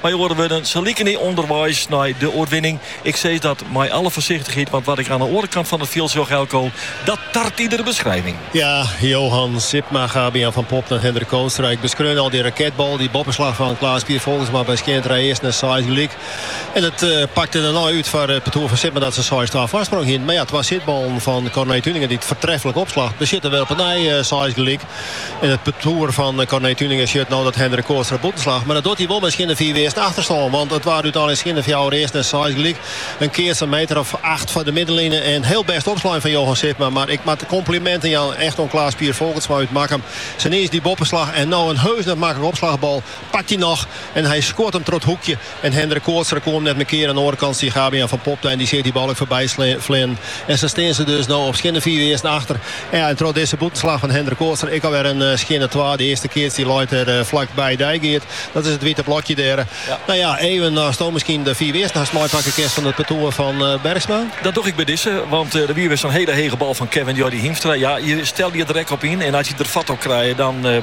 Mei oare wurden, se liken dy ûnderweis nei de oerwinning. Ik sis dat mei alle foarsichtichheid, want wat ik oan 'e oare kant fan it fjild sjoch Eelco, dat tart iedere beskrijving. Ja, Johan Sipma, Gabe-Jan van Popta en Hendrik Kootstra. Ik beskreun al dy raketbal, dy boppeslach fan Klaas Pier Folkertsma by skjinne trije earsten en seis gelyk. En it pakte dêrnei út foar it partoer fan Sipma dat se seis twa foarsprong hienen. Mar ja, twa sitballen fan Corné Tuinenga dy't foartreflik opslacht, betsjutte wer op 'e nij seis gelyk. En it partoer fan Corné Tuinenga sjocht no dat Hendrik Kootstra bûten slacht. Mar dat docht hy wol mei in skjinne fiif earsten achterstân. Want it waard úteinlik skjinne fjouwer earsten en seis gelyk. In keats in meter of acht foar de middenline. In hiel bêst opslein fan Johan Sipma. Mar ik moat kompliminten jaan echt oan Klaas Pier Folkertsma út Makkum. Sa niis dy boppeslach en no in heus net maklike opslachbal. Pakt hy noch en hy skuort him troch it hoekje. En Hendrik Kootstra koe 'm net mear keare. Oan 'e oare kant stie Gabe-Jan van Popta en dy seach dy bal ek foarby fleanen. En sa stean se dus no op skjinne fiif earsten achter. En troch dizze bûtenslach fan Hendrik Kootstra ek alwer in skjinne twa. De earste keats dy leit der flak by dy geat. Dat is it wite blokje dêr. No ja, even ast no miskien de fiif earsten hast meipakke kinst fan it partoer fan Bergsma. Dat doch ik by dizze, want der wie wer sa'n hiele hege bal fan Kevin Jordi Hiemstra. Ja, je stelle je der ek op yn en as je der fat op krije dan.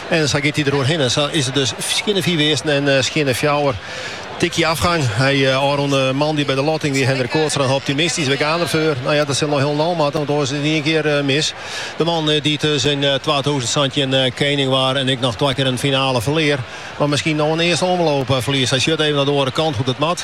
En sa giet hy der oerhin. En sa is it dus skjinne fiif earsten en skjinne fjouwer tikje afgang. Hy ôfrûne moandei by de lotting wie Hendrik Kootstra optimistysk. We gean derfoar. No ja, dat sil noch hielendal moatte, want oars is it yn ien kear mis. De man dy't dus yn twatûzen santjin kening waard en ek noch twa kear in finale ferlear, moat miskien no in earste omloop ferlieze. Hy sjocht even nei de oare kant hoe't it moat.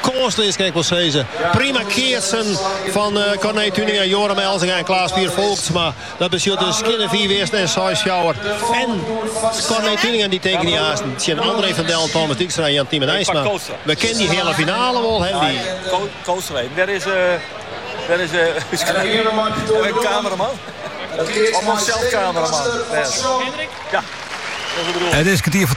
Kânsleas kin ik wel sizze. Prima keatsen fan eh, Corné Tuinenga, Yoram Elzinga en Klaas Pier Folkertsma. Dat betsjut dus skjinne fiif earsten en seis fjouwer. En Corné Tuinenga dy teken dy aansten tsjin André van Dellen, Thomas Dijkstra en Jan-Tymen Eisma. We kinne dy heale finale wol hawwe. Die. Kootstra, daar is... Uh, daar is... Uh, een cameraman. Of zelf cameraman. Ja, dat is het bedoel. Het is kwartier voor